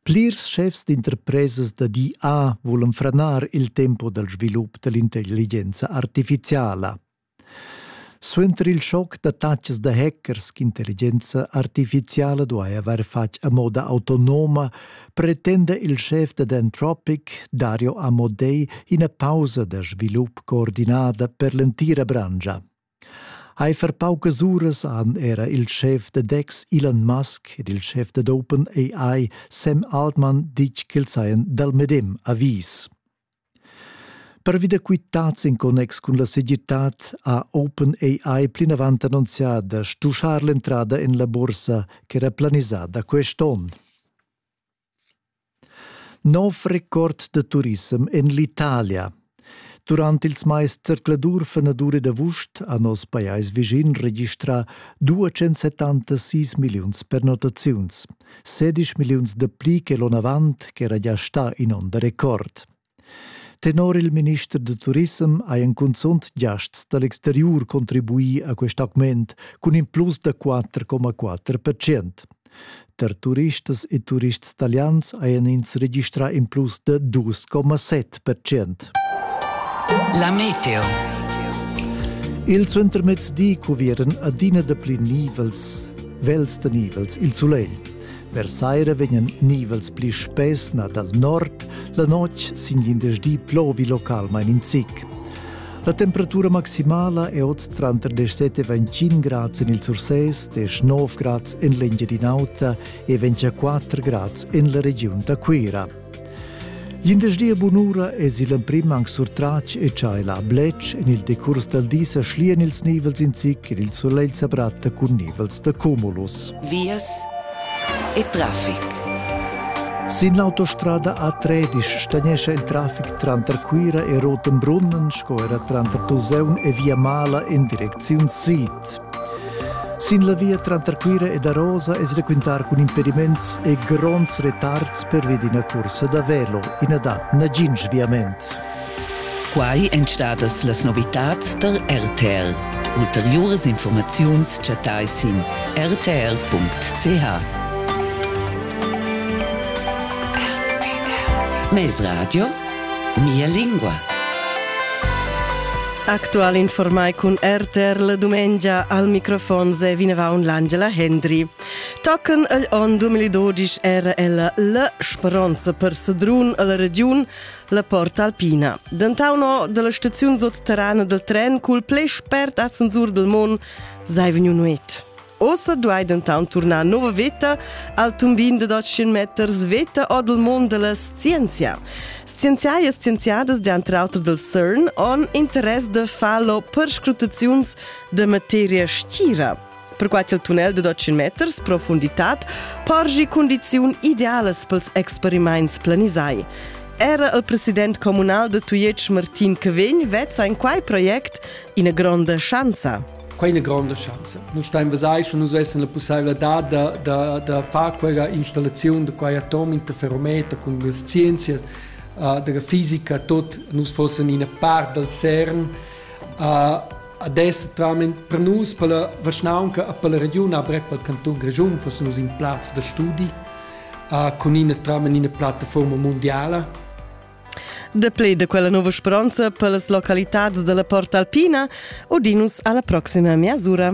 Plirs schefs d'interpresas da di A vulan franar il tempo dal svilup da l'intelligenza artifiziala. Suenter il schoc da tacas da hackers ch'intelligenza artifiziala duai avair fatg a moda autonoma, pretenda il schef dad Anthropic, Dario Amodei, ina pausa da svilup coordinada per l'entira branscha. Eifer paucas uras han era il schef da DEX Elon Musk ed il schef dad OpenAI Sam Altman ditg ch'els hajan dal medem avis. Pervi da quitads in connex cun la segirtad ha OpenAI plinavant annunzià da stuschar l'entrada en la bursa ch'era planisada quest onn. Nov record da turissem en l'Italia. Durant ils mais zercladur fenadur ed avust ha nos pajais vischin registrà 276 milliuns pernottaziuns, 16 milliuns da pli che l'onn avant ch'era gia stà in onn da record. Tenor il minister da turissem hajan cunzunt giasts da l'exteriur contribuì a quest augment cun in plus da 4,4 percent. Per turistas e turists talians hajan ins registrà in plus da 2,7 percent. La meteo. Il suentermezdi cuvieran adina dapli nivels, vels da nivels il sulegl. Per saira vegnan nivels pli spess na dal nord, la notg sin glindesdi plovi localmain in zic. La temperatura maximala è oz tranter 17-25 grads en il Sursès, 19 grads en l'Engiadin'Auta e 24 grads en la regiun da Cuira. Glindesdi e bunura es il emprim anc surtratg e cha el ha bletsch en il decurs dal di sa schlian ils nivels in zic ed il sulegl sa bratta cun nivels da cumulus. Vias e trafic. Sin l'autostrada A13 stagnescha il trafic tranter Cuira e Rotenbrunnen sco era tranter Tuseun e Via Mala in direcziun sid. Sin la via tranter Cuira ed Arosa es raquintar cun impediments e gronds retards pervi d'ina cursa da velo. I na dat nagin sviament. Quai èn stadas las novitads da RTR. Ulteriuras informaziuns chattai sin rtr.ch. Mesradio Mia lingua. Actual informai cun RTR la dumengia al microfon se vinavaun l'Angela Hendry. Tocken el on 2012 era ella la speronza per Sedrun alla regiun la Porta Alpina. Dentauno dalla staziun sotterrana del tren cul ple spert ascensur del mon sei vegnu nuet. Ossa duai dentant turnar nova veta al tumbin da 200 meters veta or dal mund da la scienzia. Scienziai e scienziadas dentr auter dal CERN han interess da far la perscrutaziuns da materia stgira. Perquai il tunnel de 200 meters profunditad porgi condiziun idealas pels experimaints planisai. Era il president comunal de Tujetsch Martin Cavegn vezza in quai project ina gronda schanza. Quei è ina gronda schanza. Nus stein vesai, sche nus vessen la pusseivladad da, da, da far quella installaziun da quei atom interferometer cun las scienzias uh, della fisica tot nus fossen ina part dal CERN uh, adesso tramit per nus per la vaschnaunca a per la region a brec pel canton Grischun fossen nus in plaz da studi uh, con ina tramen ina plattaforma mondiala Dapli da quella nova speronza per las localitads dalla Porta Alpina udinus alla proxima miasura.